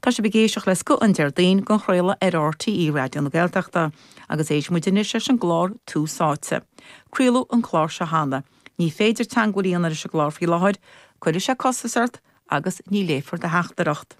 Tá sibh ag éisteacht le scoth an Déardaoin á chraoladh ar RTÉ Raidió na Gaeltachta agus éistfidh muid anois leis an gclár Tús Áite. Craoladh an clár seo cheana. Ní féidir teagmháil a dhéanamh leis an gclár faoi láthair, cuirfidh sé costas ort agus ní léifear do theachtaireacht.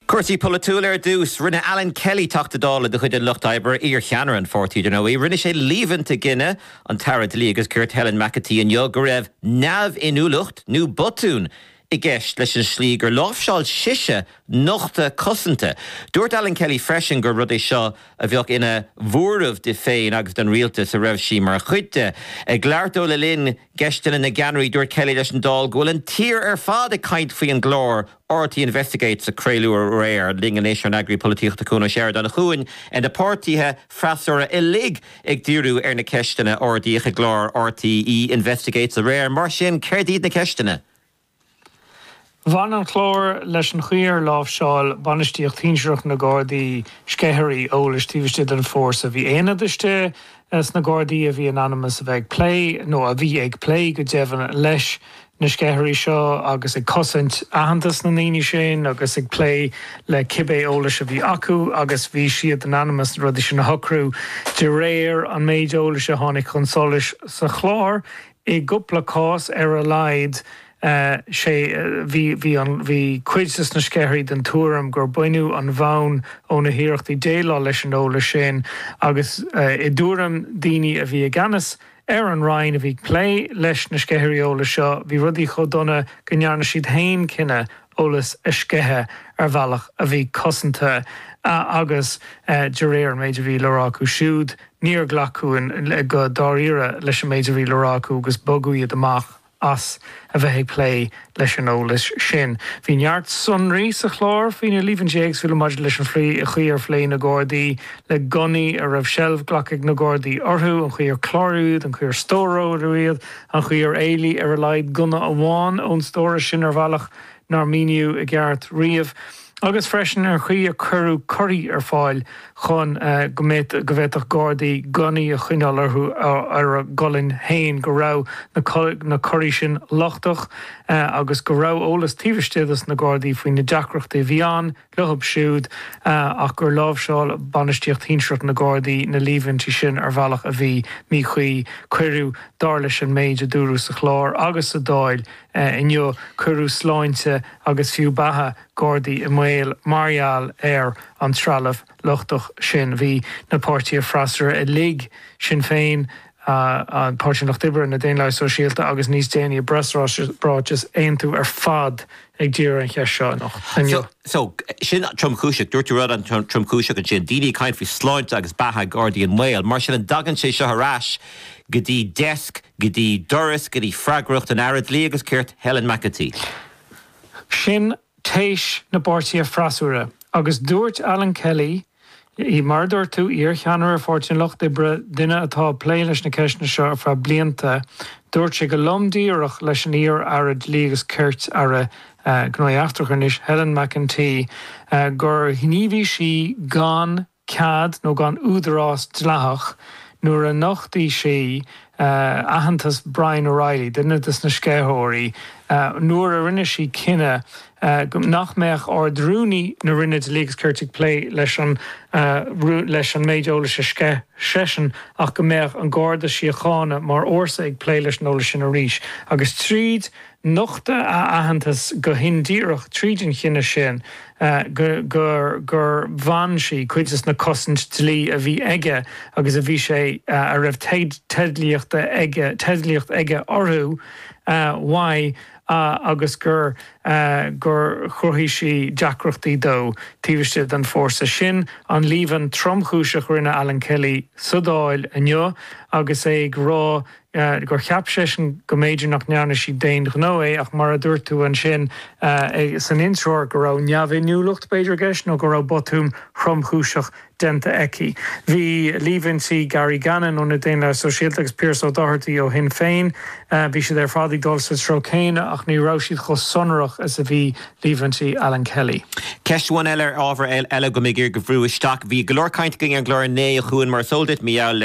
Cúrsaí polaitiúla ar dtús. Rinne Alan Kelly, Teachta Dála de chuid an Lucht Oibre, iar-cheannaire an pháirtí dar ndóigh, rinne sé líomhaintí i gcoinne an tAire Dlí agus Cirt Helen McEntee inniu go raibh neamhinniúlacht nó botún i gceist leis an tslí gur láimhseáil sise nochtadh cosanta. Dúirt Alan Kelly freisin gur rud é seo a bheadh ina mhuirear di féin agus don Rialtas a raibh sí mar chuid de. Ag labhairt dó le linn Ceisteanna na gCeannairí dúirt Kelly leis an Dáil go bhfuil an tír ar fad ag caint faoi an gclár RTÉ Investigates a craoladh aréir. Linn anois ár n-eagraí polaitíochta Cuan Ó Seireadáin. A Chuain, bhí na páirtithe freasúra uilig ag díriú ar na ceisteanna a ardaíodh i gclár RTÉ Investigates aréir. Mar sin, céard iad na ceisteanna? Bhain an clár leis an chaoi ar láimhseáil bainistíocht shinsearach na Gardaí sceithirí eolais taobh istigh den fhórsa. Bhí aonad istigh Ins na Gardaí a bhí in ainm is a bheith ag plé, nó a bhí ag plé, go deimhin, leis na sceithirí seo agus ag cosaint aitheantas na ndaoine sin agus ag plé le cibé eolas a bhí acu agus bhí siad in ainm is na rudaí sin a shocrú de réir an méid eolais a tháinig chun solais sa chlár I gcúpla cás ar a laghad sé bhí cuid de na sceithirí den tuairim gur baineadh an bhonn ó na hiarrachtaí déileáil leis an eolas sin agus i dtuairim daoine a bhí i gceannas ar an Roinn a bhí ag plé leis na sceithirí eolais seo bhí rudaí chomh dona go ndearna siad féin cinneadh eolas a sceitheadh ar bhealach a bhí cosanta agus de réir an méid a bhí le rá acu siúd níor glacadh go dáiríre leis an méid a bhí le rá acu agus bogadh iad amach as a bheith ag plé leis an eolas sin. Bhí neart sonraí sa chlár faoi na líomhaintí éagsúla maidir leis an chaoi ar phléigh na Gardaí le gunnaí a raibh seilbh glactha ag na Gardaí orthu, an chaoi ar cláraíodh iad, an chaoi ar stóráladh iad. An chaoi ar éalaigh ar a laghad gunna amháin ón stóras sin ar bhealach nár míníodh i gceart riamh, agus freisin an chaoi ar cuireadh curraí ar fáil chun go bhféadfadh gardaí gunnaí a choinneáil orthu ar a gcolainn féin, go raibh na curraí sin lochtach agus go raibh eolas taobh istigh dos na gardaí faoi na deacrachtaí a bhí ann leo siúd ach gur láimhseáil bainistíocht shinsearach na Gardaí na líomhaintí sin ar bhealach a bhí míchuí. Cuireadh, dar leis an méid a dúradh sa chlár agus sa Dáil inniu, cuireadh sláinte agus fiú beatha Gardaí i mbaol mar gheall ar an trealamh lochtach sin. Bhí na páirtithe freasúra uilig, Sinn Féin, Páirtí an Lucht Oibre, na Daonlathaigh Sóisialta agus níos déanaí i bpreasráiteas Aontú ar fad ag díriú ar an cheist seo anocht, inniu. So, sin tromchúiseach. Dúirt tú rud an-tromchúiseach ansin. Daoine ag caint faoi sláinte agus beatha gardaí i mbaol. Mar sin, an dtagann sé seo ar ais go dtí deasc, go dtí doras, go dtí freagracht an Aire Dlí agus Cirt, Helen McEntee? Sin téis na bpáirtithe freasúra agus dúirt Alan Kelly, I mar a dúirt tú, iar-cheannaire Pháirtí an Lucht Oibre, duine atá ag plé leis na ceisteanna seo ar feadh blianta, dúirt sé go lom díreach leis an iar-Aire Dlí agus Cirt, Aire Gnóthaí Eachtracha anois, Helen McEntee, gur ghníomhaigh sí gan cead nó gan údarás dleathach nuair a nocht sí aitheantas Brian O'Reilly, duine de na sceitheoirí, nuair a rinne sí cinneadh nach mbeadh Ard-Rúnaí na Roinne Dlí agus Cirt ag plé leis an méid eolais a sceith seisean ach go mbeadh an Garda Síochána mar fhórsa ag plé leis an eolas sin arís agus tríd Nochtadh a aitheantas go hindíreach tríd an chinneadh sin gur bhain sí cuid de na cosaint dlí a bhí aige agus a bhí sé a raibh teidlíocht aige orthu uaidh agus gur gur chruthaigh sí deacrachtaí dó taobh istigh den fórsa sin. An-líomhain tromchúiseach rinne Alan Kelly sa Dáil inniu agus é ag rá go gur cheap seisean go mb'fhéidir nach ndearna sí d'aon ghnó é ach mar a dúirt tú ansin san intreoir go raibh neamhinniúlacht b'fhéidir i gceist nó go raibh botún thromchúiseach déanta aici. Bhí líomhaintí Gary Gannon ó na Daonlathaigh Sóisialta agus Piaras Ó Dochartaigh ó Shinn Féin, bhí siad ar fad ag dul sa treo céanna ach ní raibh siad chomh sonrach is a bhí líomhaintí Alan Kelly. Ceist amháin eile ar ábhar eile go mb'fhéidir a bhrú isteach. Bhí go leor cainte againn ar an gclár inné a chuaigh, mar is eol duit, mí-ádh le